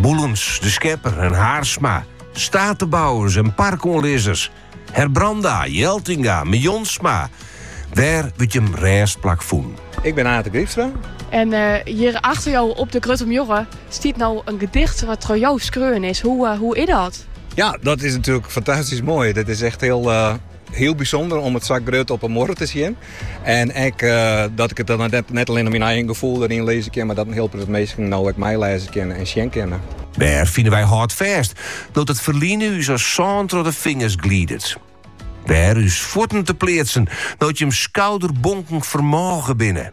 Boelens, De Schepper en Haersma, steatebouwers en parkoanlizzers, Herbranda, Jeltinga, Mejontsma. Wêr wurdt jim rêstplak fûn? Ik bin Ate Grypstra. En uh, eh, hjir achter jo op de grutte muorre stiet no in gedicht wat troch jo skreaun is. Hoe, eh, hoe is dat? Ja, dat is natuerlik fantastysk moai. Dat is echt hiel, eh, Hiel bysûnder om it sa grut op 'e muorre te sjen. En ek dat ik it dan net allinnich myn eigen gefoel deryn lizze kin, mar dat in hiel protte minsken no ek my lêze kinne en sjen kinne. Wêr fine wy hâldfêst, no't it ferline ús as sân troch de fingers glidet? Wêr ús fuotten te pleatsen, no't jim skouderbonken fermôge binne?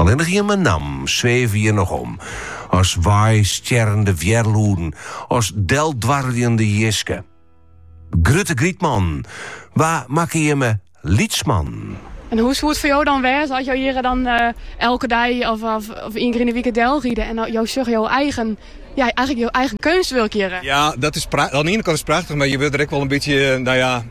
Allinnich jimme nammen sweve hjir noch om, as weistjerrende wjerlûden, as deldwarreljende jiske. Grutte grytman, wa makke jimme lytsman? En hoe soe it foar jo dan wêze as jo hjir dan eh, elke dei of, of, of ien kear yn de wike delride en jo sjogge jo eigen, ja, eigenlik jo eigen keunstwurk hjir? Ja, dat is prachtich. Oan de iene kant is it prachtich, mar je wurde der ek wol in bytsje, eh, no ja,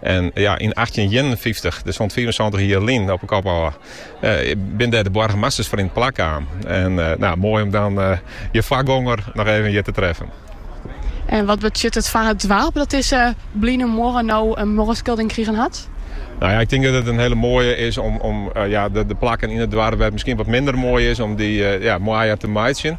En ja, yn achttjinhûndertienenfyftich, dus hûndertfiifensantich jier lyn op 'e kop ôf, binne dêr de boargemasters foar yn de plak kaam. En no, moai om dan je foargonger noch even hjir te treffen. En wat betsjut it foar it doarp dat dizze bline muorre no in muorreskildering krigen hat? No ja, ik tink dat it in hiele moaie is om, om eh, ja, de, de plakken yn it doarp wêr't it miskien wat minder moai is, om dy eh, ja, moaier te meitsjen.